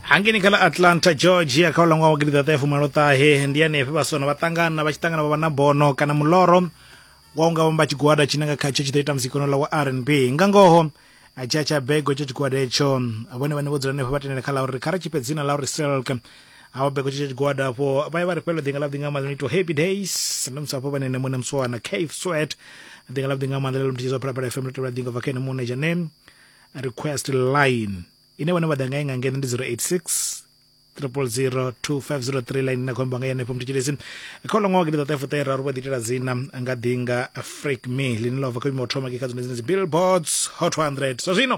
hangeni kha ḽa atlanta georgia kha ulangwa wa gidiḓaṱa ya fumaloṱahe ndi hanefhe vhasona vha ṱangana vha tshi ṱangana vha vha na bono kana muloro wa unga vhamba tshigwada tshine nga khatsho tshi ḓo ita muzikano la wa r n b nga ngoho tsha tsha bego tsha tshigwada etsho vhone vhane vho dzula hanefho vha tendela kha ḽa uri kha ri tshifhe dzina ḽa uri silk avho bego tsha tshigwada afho vha ye vha ri fhelo ḓinga ḽavhuḓi nga maḓi ito happy days ndo musi afho vhanene muṋe muswana cave sweat ḓinga ḽavhuḓi nga maḓi ḽa lomthidzwa phalaphala fm ḽo tevhela ḓinga bva kha ene muṋe dzhaneni request line ine vhone vha ḓa nga inga ngeno ndi 086 triple zero two five zero three line na khombo nga yenefho mutshitshilisi kha ulo ṅwaha gidiḓaṱahe fuṱahe raru vha ḓiitela dzina nga ḓinga freak me ḽine ḽa bva kha vhimo thoma ke kha dzone dzine dzi billboards hot 100 zwa zwino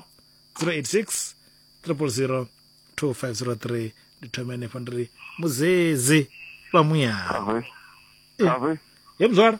086 triple zero two five zero three ndi thome henefho ndi ri muzezi vha muyani ye muzwala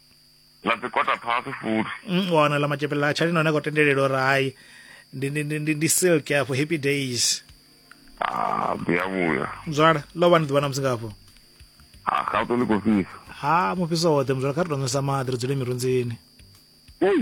ḽa dzi kota phasi futhi Mm, u wana ḽa matshepele ḽa tshalino ane a khou tendelelwa uri hai ndi, ndi, ndi, ndi, ndi silk afho happy days Ah, ḓi a vhuya mzwala ḽo vha ni ḓuvha na musi ngafho Ah, gato ḽi khou fhisa ha mufhiso woṱhe mzwala kha ri tou nwesa maḓi ri dzule mirunzini Ei,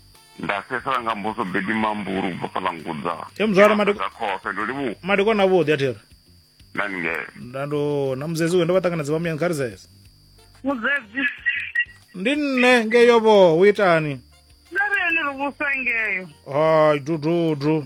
nda sesela nga mbuso bedi mamburu u bva fhaḽa ngudza E, mzwala, madi- Nga khofhe ndo livhuwa madekwana avhuḓi a thiri na ningele nda ndo na muzedzi uyo ndo vha ṱanganedza vhamuyani kha ri zeze muzedzi ndi nne ngeyo vho u itani na ri ene ri vhusa ngeyo hai dududu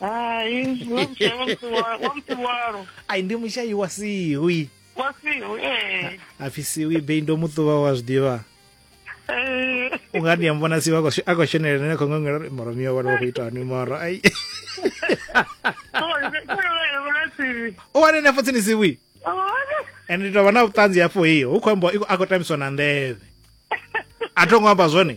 Hai, zwi mutshai wa Mtsiwa- wa Mtsiwalo. ai ndi mushayi wa siwi Wa Siwi, eh. apfi siwi bei ndo muṱuvha wa zwiḓivha Eh, u nga ndi a mbona siwi a khou sho- a khou shonelela nene khou ngangela uri moro miyo vhana vha khou ita hani moro ai sorry, sorry, sorry, sorry, sorry. u wane nefo tsini siwi Oh, and ndi tovha na vhuṱanzi hafho hiyo hu khou ambiwa i khou- a khou tambiswa na nḓevhe a tho ngo amba zwone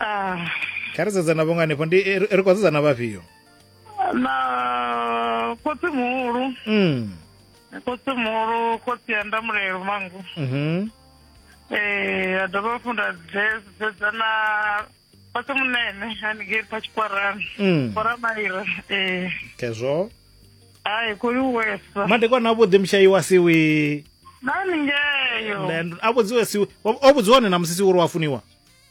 Ah. kha ri sedzana vhonga hanefho ndi eh, ri khou sedzana vhafhio na khotsi muhulu mm. khotsi muhulu khotsi ya ndamulelo mangu mm -hmm. eh a dovha hafhu nda dzedza na khotsi munene haningei kha tshikwarani mm. koramaira eh kezwo hayi kuliwesa madekwana avhuḓi mushayi wa siwi nani ngeyo a vhudziwe siwi o vhudziwa one na musisi uri wa funiwa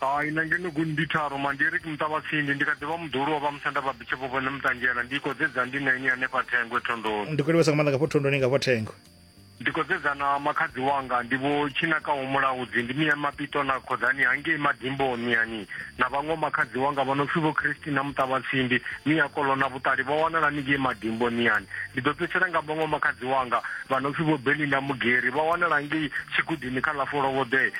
Hai, na ngeno gu ndi tharu, ma ndi ri ki muṱavhatsindi, ndi kha ḓi vha muḓulu wa vha musanda vha bishop vhone muṱanzhela, ndi iko dze dza ndi na ini hanefha Thengwe thondoni. Ndi khou livhesa nga maanḓa ngafho thondoni ngafho Thengwe. Ndi khou dzedza na makhadzi wanga ndi vho Tshinakaho Mulaudzi, ndi mia Mapito na Khoḓani hangei Madimboni miani, na vhaṅwe vho makhadzi wanga vha no pfi vho Christi na Muṱavhatsindi, mia Kolo na Vhuṱali vha wanala ni ngei Madimboni miani. Ndi ḓo fhedzisela nga vhaṅwe vho makhadzi wanga vha no pfi vho Belinda Mugeri vha wanala ngei Tshigudini kha ḽa Folovhoḓee.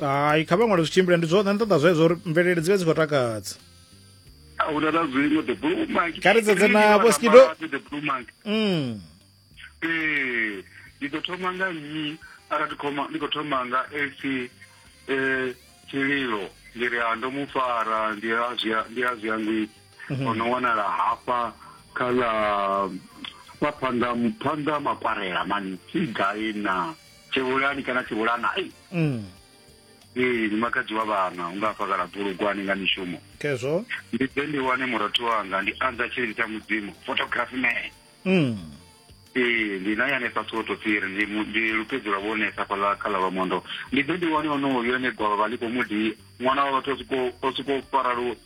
hai kha vhaṅwale zwi tshimbile ndi zwone nṱoḓa zwezwo uri mvelele dzi vhe dzi khou takadza ahuna na zwiṅwe the blue monkey kha ri sedze na boskido the blue monkey mm eh ndi ḓo thoma nga nnyi ara ndi khoma ndi khou thoma nga ac eh tshililo ndi ri ando mu fara ndi a zwi ndi a zwi ngwi mhm. ono wanala hafha kha la phanḓa phanḓa makwarela mani si gai na tshivhulani kana tshivhulana ei mm. ee ndi makadzi wa vhana unga fhakala bulugwani nga mishumo khezwo ndi ḓe ndi wane murathu wanga ndi anza tshilili tsha mudzimu photography man mm. ee ndi naye hanefha soto tsiri ndi, ndi lupedzi lwa vhonesa fhala kha ḽa lwamondo ndi ḓe ndi wane onoyo ene gwavha vha ḽi khou mudi ṅwana wa vhathu o siko fara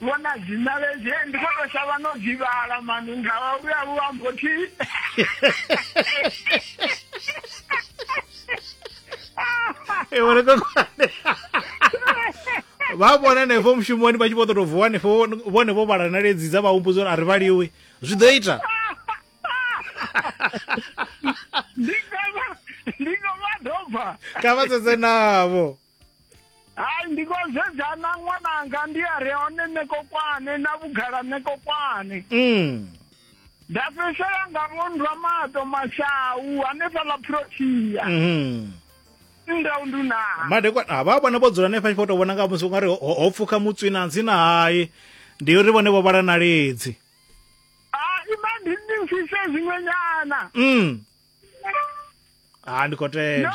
Vhona dzina ledzi eh, ndi khou tou shavha no dzivhala mani nga vhuya vhu ambo thi e vhona kokwane vha vhona hanefho mushumoni vha tshi vho ṱoto vuwa hanefho vhone vho vhala na ledzi dza vha humbudza uri a ri vhaliwi zwi ḓo ita ndi nga vha dobva ka vha sedze navho hai ndi khou sedzana ṅwananga ndi a re hone ṋekokwane na vhugala ṋekokwane mm. nda fhedzisela nga vhondwa mato mashau hanefhaḽa protia mm. nda undunaa madekwana ha vha vhona vho dzula hanefha tshifha u tou vhona nga musi u nga ri ho pfukha mutswi na ntsina hai ndi uri vhone vho vhala na ledzi ima ndi ndi mfise zwiṅwenyana mm. ha ndi khou tenda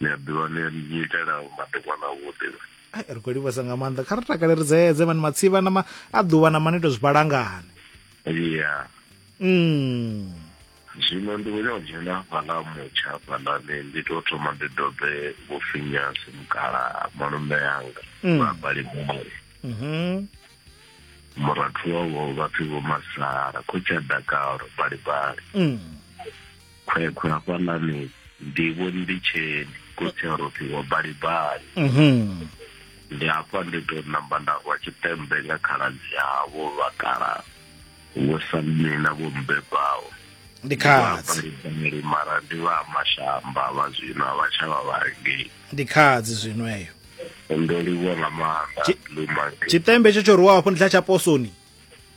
ni a ḓivha ni ni itela madekwana avhuḓi ai ri khou livhesa nga maanḓa kha ri takale ri dzeedze mani matsivha na ma a ḓuvha na mani tou zwi balangani ya mm. zwino ndi khou nyaka dzhena fhaḽa mutsha hafhaḽani ndi tou thoma ndi dobe vho finyasi mukala malume yanga mm. vha balimori mm -hmm. murathu wavho vha pfi vho masala khotshi a dakalo balibali mm. Khwekhwe hafhanani ndivho ndi tsheni khotsi a rothi wa balibali mhm. ndi hafha ndi to namba nda rwa tshitembe nga khaladzi havho vhakala vho samme na vho mbebaho ndi khadzi mara ndi vha mashamba vha zwino a vha tsha vha vharengei ndi khadzi zwino eyo ndo livhuwa nga maanḓa tshitembe tsho tsho rwiwa hafho ndi tsha tsha posoni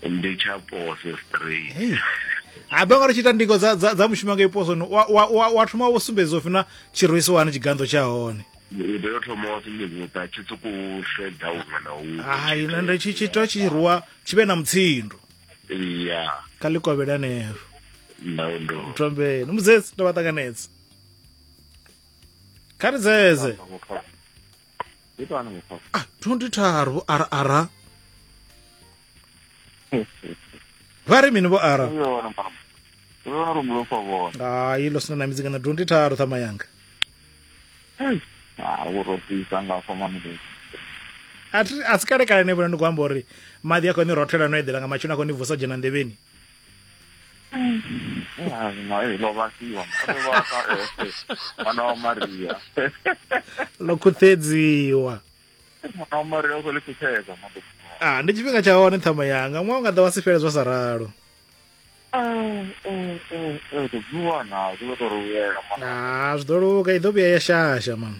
ndi tsha poso straight Hey. abe nga ri tshi ita ndingo dza, dza, dza mushumo nga iposoni wa, wa, wa, wa thoma wo sumbedza u fina tshirwisi wani tshiganḓo tsha hone u tea u thoma wa sumbedza tshi sokou sedza huṅwe na huṅwe hai na ndi tshi tshi tea tshi rwa tshi vhe na mutsindo ya kha ḽi kovhele anefho ndau ndo mthombeni mudzedzi ndo vha ṱanganedza kha ri dzedze ndi to ana mukhosa ah 23 vho ara ara vha ri mini vho ara uyo wana mama uyo wana rumulo kwa vona hayi lo sina na midzika na 23 thama yanga ah wo rotisa nga fa mama ndi a thi- a si kale kale ne vhona ndi khou amba uri maḓi a khou ni rothela no eḓela nga matsheloni a khou ni vusa dzhena nḓevheni mwana wa maria ḽo khuṱedziwa mwana wa maria u khou ḽi khuthedza ah ndi tshifhinga tsha hone ṱhama yanga ṅwaha unga ḓa wa si fhele zwa sa ralo zwi ḓo luga i ḓo vhuya ya shasha mama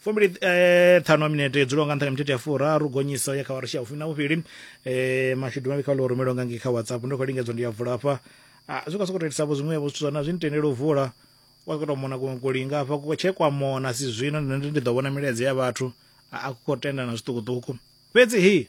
fumbili eh, ṱhanu a minete yo dzulaho nga nṱha nga mithethe ya furaru gonyiso ya kha warashi ya vhufumi na vhuvhili eh, mashudu mavhi kha ulo rumelwa nga ngei kha whatsapp ndo khou lingedzwa ndi ya vula hafha ah, zwi kha sokou telisavho zwiṅwevho zwithu zwana zwi nitendele u vula wa khou tou mona kuṅwe kulinga hafha ku tshe kwa mona si zwino ndi ndi ḓo vhona milaedza ya vhathu a a ku khou tenda na zwiṱukuṱuku fhedzi hi